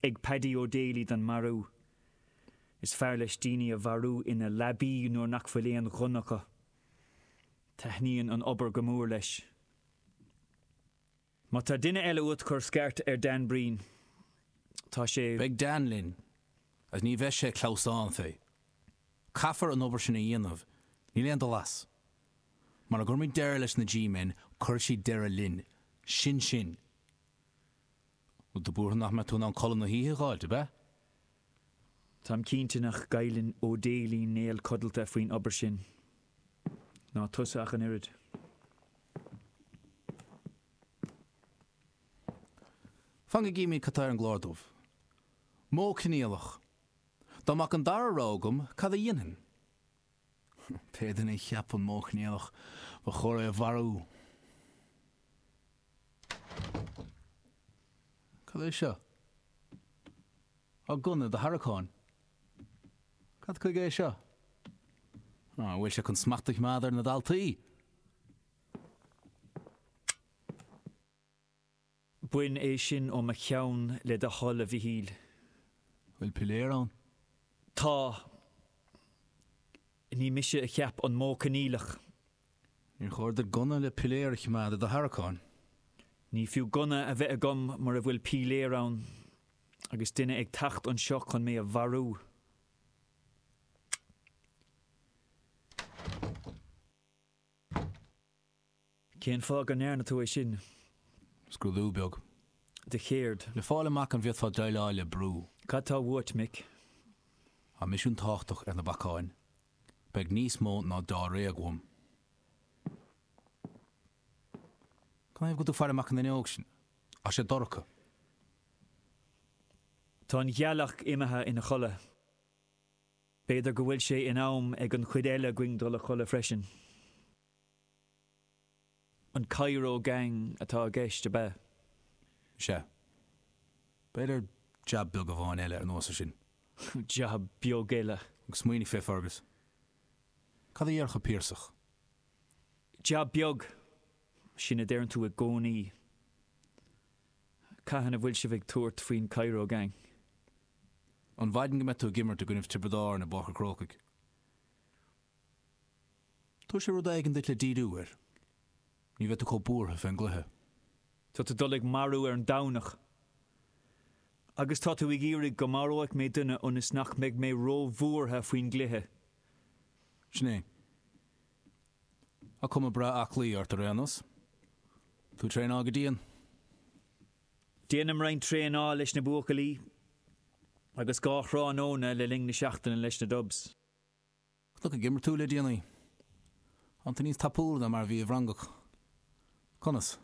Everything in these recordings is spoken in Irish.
ag Paddy O'Daly don marú. Is fearr leis daoine a mharú ina leabaí nuair nach bhfuil aon ghunna acu. Taitníonn an obair go mór leis. Má tá duine eile uait cuir scairt ar Dan Breen. Tá sé. Beidh Dan linn, is ní bheidh sé clamhsán fé. Caithfear an obair sin a dhéanamh, níl aon dul as. Mara gcuirfimid deireadh leis na G-men, cuirfidh siad deireadh linn. Sin sin. Ó, tá tú buartha nach mbeidh tú in ann codladh na hoíche, a Dhálaigh, ab ea? Táim cinnte nach gcailleann O'Daly néal codlata faoin obair sin. Ná tusa ach an oiread. Fan go gcífimid cad tá ar an gclár dubh. Modh Coinníollach, Dá mbeadh an dara rogha agam, cad a dhéanfainn? Pé duine a cheap an Modh Coinníollach, ba chóir é a mharú. Cad é seo? Á, gunna i do tharraiceáin. Cad chuige é seo? Á, an bhfuil sé chun smacht a choimeád ar na daltaí? Bain é sin ó mo cheann, le do thoil, a Mhichíl. Bhfuil piléar ann? Tá. Ní mise a cheap an modh coinníollach. Níor chóir duit gunna le piléar a choimeád i do tharraiceáin. Ní fiú gunna a bheith agam mura bhfuil piléar ann, agus duine ag teacht anseo chun mé a mharú. Cén fáth go ndearna tú é sin? scrúdú beag. de chéard? Le fáil amach an bhféadfá déileáil le brú. Cad tá uait, Mick? Tá misiún tábhachtach ar na bacáin. Beidh níos mó ná dáréag uaim. Canathaobh go bhfuil tú faire amach an fhuinneog sin? Tá sé dorcha. Tá an ghealach imithe ina chodladh. B'fhéidir go bhfuil sé in am ag an chuid eile againn dul a chodladh freisin. An Cairo Gang atá i gceist, ab ea? Is ea. B'fhéidir jab beag amháin eile ar nós é sin. Jab beag eile. Agus smaoinigh fé Fergus. Cad a déarfadh Piarsach? Jab beag! Sin a deireann tú i gcónaí. Cathain a bhfuil sibh ag tabhairt faoin Cairo Gang? An mhaidin go mbeidh tú ag imirt i gcoinne Tiobraid Árann i bPáirc an Chrócaigh. Tabharfaidh sé rud éigin duit le díriú air. Ní bheidh tú chomh buartha fén gcluiche. Tá tusa ag dul ag marú ar an Domhnach. Agus tá tú ag iarraidh go maródh mé duine ionas nach mbeidh mé róbhuartha faoin gcluiche. Sin é. Tá cuma breá aclaí ort ar aon nós. Tá tú ag traenáil go dian. Déanaim roinnt traenála leis na buachaillí agus dhá thráthnóna le linn na seachtaine leis na Dubs. Chonac ag imirt tú le déanaí? Tánn tú níos tapúla ná mar a bhís i bhFrongoch? Conas?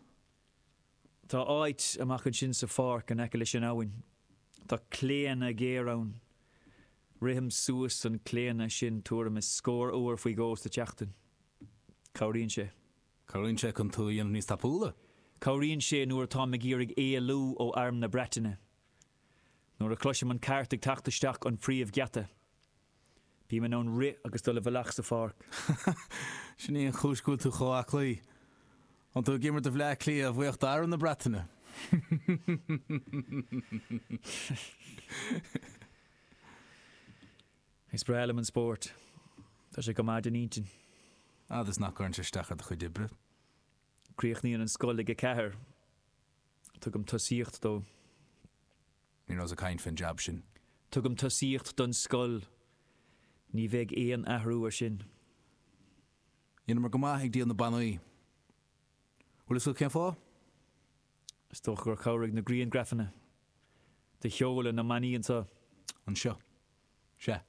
Tá áit amach ansin sa pháirc in aice leis an abhainn. Tá claonadh géar ann. Rithim suas an claonadh sin tuairim is scór uair faoi dhó sa tseachtain. Cabhraíonn sé. Cabhraíonn sé chun tú a dhéanamh níos tapúla. Cabhraíonn sé nuair atáim ag iarraidh éalú ó Arm na Breataine. Nuair a chloisim an cairt ag teacht isteach an príomhgheata, bím in ann rith agus dul i bhfalach sa pháirc. Sin í an chúis go bhfuil tú chomh aclaí. Tánn tú ag imirt do Bhleá Cliath, a bhuíochas d'arm na Breataine? Is breá liom an spórt. Tá sé go maith don intinn. Fhad is nach gcuireann sé isteach ar do chuid oibre. Críochnaíonn an scoil ag a ceathair. Tugaim tosaíocht dó. Ní rabhas ag caint faoin jab sin. Tugaim tosaíocht don scoil. Ní bheidh aon athrú ar sin. Dheineamar go maith ag díol na bannaí. Bhfuil a fhios agat cén fáth? Is dócha gur chabhraigh na griangrafanna do sheoladh na mbannaí anseo. Anseo. Sea.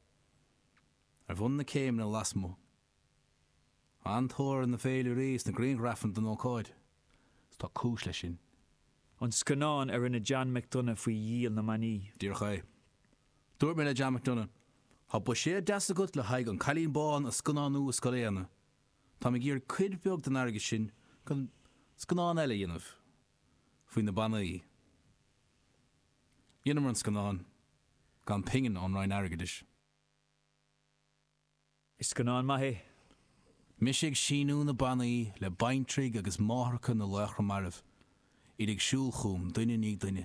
Ar bhun na céimeanna lasmuigh. An-tóir ar na féilirí sna grianghrafanna den ócáid, is tá cúis leis sin. An scannán a rinne John McDonagh faoi dhíol na mbannaí. Díreach é. Dúirt mé le John McDonagh, Tá buiséad deas agat le haghaidh An Cailín Bán a scannánú i Scoil Éanna. Táim ag iarraidh cuid bheag den airgead sin chun scannán eile a dhéanamh faoi na bannaí. Dheineamar an scannán, gan pingin ón Roinn Airgeadais. Is scannán maith é. Mise ag síniú na bannaí le baintrigh agus máithreacha na laochra mairbh. Iad ag siúl chugam, duine i ndiaidh duine.